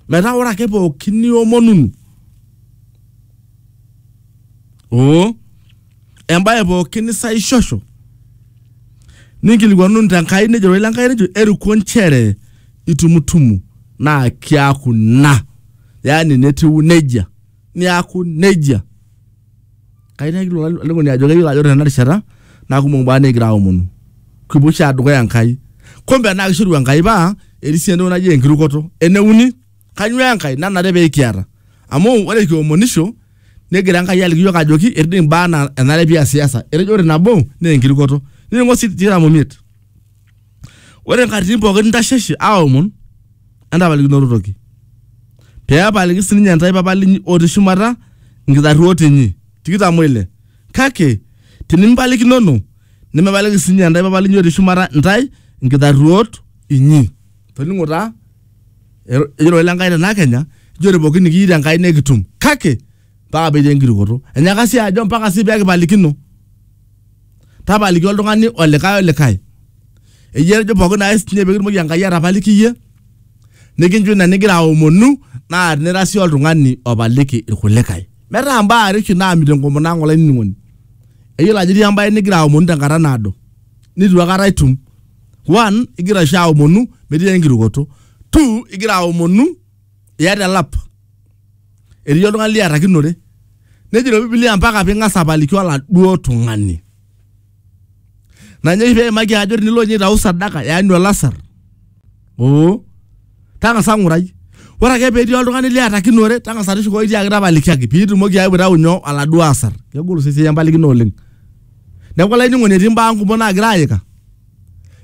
metaa ore ake pookin niomonunu oo embaye pookin nisaishosho ninkilikuanunu tenkai nejo roi lenkai nejo eruko nchere itumutumu naa kiaku ina yaani netiu nejia niaku nejia Kayieu nayaki ilo alikoni ajo keyiolo ajo ore tena rishata naa kumok imbaa nikigira aomonu. Kipuo oshi aaya dukuya Enkai. Kumbe naa kishoru Enkai paa etii sii entoki naji enkirukoto. Ene uni, kainyoo enkae nanare pee kiata? Amu ore kiomonisho negira Enkai aliki iyiook ajoki etii doi imbaa naa enare pee iasiasa. Etejo ore nabo naa enkirukoto. Niningo sii tikitam omiet. Ore nkatitin pookin ntasheshe aomon, entapalikinoto toki, pee epaliki si ninye intae Papa linyi otii shumata nkitarruot inyi. tikitam o ile Kake tinimipalikinono, nemepaliki si ninye intae Papa linyi otii shumata intae nkitarruot inyi. Toning'o taa, ejoito Ile Enkai te ina kenya, ijoote pookin nikiyieu te Enkai nekitum, kake mpaka petii enkirukoto enyaka sii ajo mpaka sii pekipalikino tapaliki oltung'ani olikae olikae eyie etejo pookin naes ninye pekitumoki enkai atapaliki iyie nikincho ina nigira aomonu naa tinira sii oltung'ani opaliki irkulikae metaa imbaa are oshi naamit enkomono ang olainining'oni eyiolo ajo etii embae nigira aomonu tenkata naado nitu akata itum one igira oshi aomonu metii enkirukoto two igira aomonu iyata elap etii oltung'ani liatakinore nejito bibilia mpaka ping'as apaliki oladuo tung'ani nanye oshi peimaki ajo tinilo ninye aitau sadaka yaani olasar oo tang'asa ng'urai ore ake petii oltung'ani liatakinore tang'asa tushukoki tiaki tapalikiaki piitumoki ayeu aitau nyoo oladuo asar kegol sii esiai empalikino oleng neeku olainining'oni etii imbaa kumok naagira ayika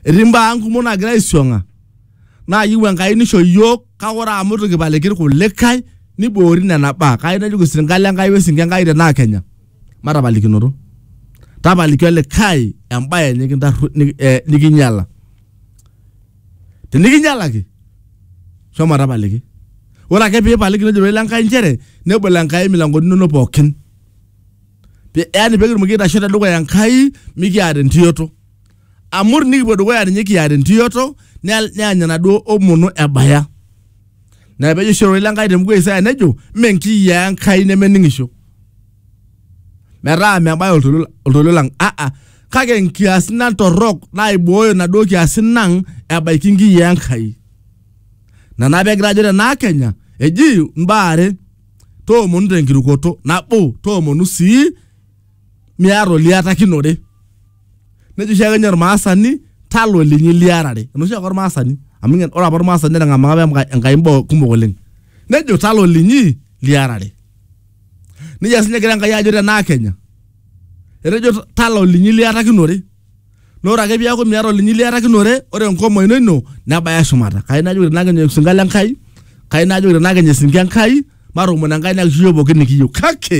etii imbaa ang kumok naagira aisiong'a naa yieu Enkai nisho iyiook kake ore amu itu kipaliki irkulikae niboori nena baa kai najoki sirkali Enkai wesinke Enkai tenaa Kenya matapalikinoto tapaliki olikae embaye nikintarru nik- eh, nikinyiala tenikinyialaki shomo tapaliki ore ake piipaliki nejo ilo Enkai nchere nebol Enkai imilankoni inonok pookin Pe- yaani pekitumoki aitasho tedukuya Enkai mikiata entioto amur nikipuo dukuya ninye kiata entiyoto nea- neany enaduo omono ebaya na pejo oshi ororei lenkai tembuku e isaya nejo mme nkiyiaa enkai nemening'isho metaa mebaya oltolio oltolio lang aa kake nkiasin ang torrok naibooyo naduo kiasin ang ebaiki nkiyiaa enkai nana pegira ajo tenaa kenya eji mbaa are toomonu tenkirukoto nabo toomonu sii miata oliatakinore nejo oshiake ninye ormaasani talo linyi liarare enoshi ake ormaasani amu ingen- ore apa ormaasani netang'amaka apa enkai- enkai mboo kumok oleng nejo talo linyi liarare nejia sinye egira enkai ajo tenaa kenya etejo "Ta- talo linyi liatakinore na ore ake piaku miata olinyi liatakinore ore enkomo ino ino nebaya shumata kai najoki tenaa kenya osinka le nkai kai najoki tenaa kenya esinka enkai matoomon enkai nekishukoki pookin nikiyieu kake